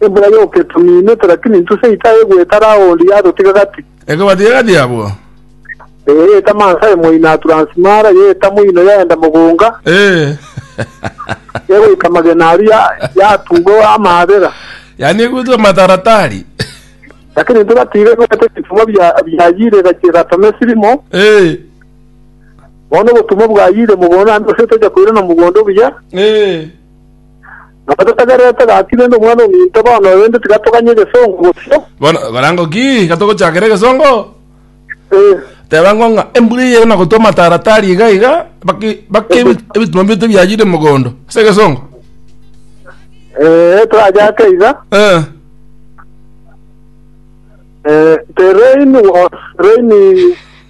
Embura y'oketuminete, lakini intwe seito aye gwetara aondi yatotiga gati. Ekobatiga gati abwo. Ee, etamansa emo ina Turansimara y'etamo ino yaenda mogonga, Ee. egoika magena aria ya- yatuga amaabera. Yaani egutwa mataratari. Lakini intwe gatiga egwete ebitumwa bia biayire egachia egatoma esirimo, Ee. bono obotumwa bwayire mogondo naende gose tocha koirana mogondo buya. Ee. Nabo totagererete gaki rende omwana ominto bono oyo, rende tiga toganye egesongo bosio. Bono okorango ki gatogochakera egesongo? Eh, Teba ng'o ng'a embura eye na gotwa amataratari iga iga baki baki ebi- ebituma bieto biayire mogondo ase egesongo. eh, torachake iga. Eh. Eh, the rain was raining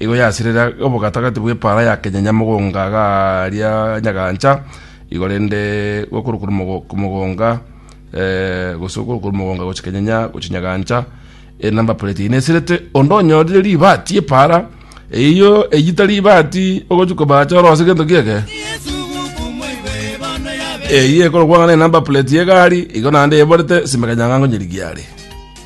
Igo yasirera obogatagati bw'epaara ya kenyanya mogonga garia nyagaancha igo rende gokorokwa mogonga gose okorokwa mogonga gochia kenyanya gochia nyagaancha enamba plate eye nesirete onde onyorire ribaati epaara eyio eyio tari ribaati ogochia kobacha orose gento giake eyio ekorokwa ng'a enamba plate y'egari igo naende eborete sime kanyang'ango nyirigiare.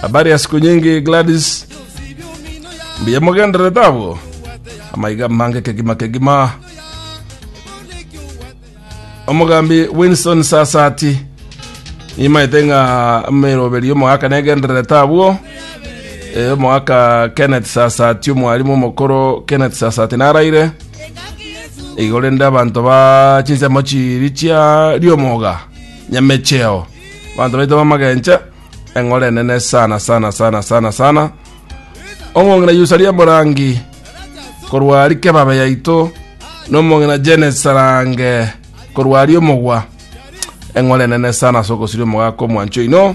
habari ya siku nyingi gladys mbuya mogendererete abwo amaiga mange kegima kegima omogambi winston sasati nimaete ng'a meroberi omogaka negendererete abwo Eh, omogaka kenneth sasati omwarimu omokoro kenneth sasati naraire igorende abanto ba chinsemo chiri chia riomoga nyamecheo banto baito bamagenche eng'ora enene sana sana sana sana sana omong'ina yusaria morangi korwa rike babe yaito nomong'ina jenes sarange korwa ari omogwa eng'ora enene sana sokosiria omogaka omwancho ino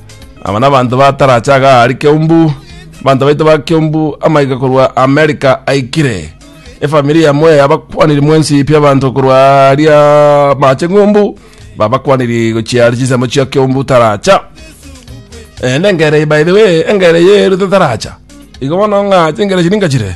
Aba nabanto ba taracha iga aria Kiombu, abanto baito ba Kiombu amaiga korwa America aikire. Efamiri ya Mwea abakwaniri mwensi pi abanto korwa aria Mache Ng'umbu babakwaniri gochia aria chinsemo chia Kiombu taracha. Eh, nengere by the way, engere eye erute taracha. Igo bono ng'a chingere echi ninkachire.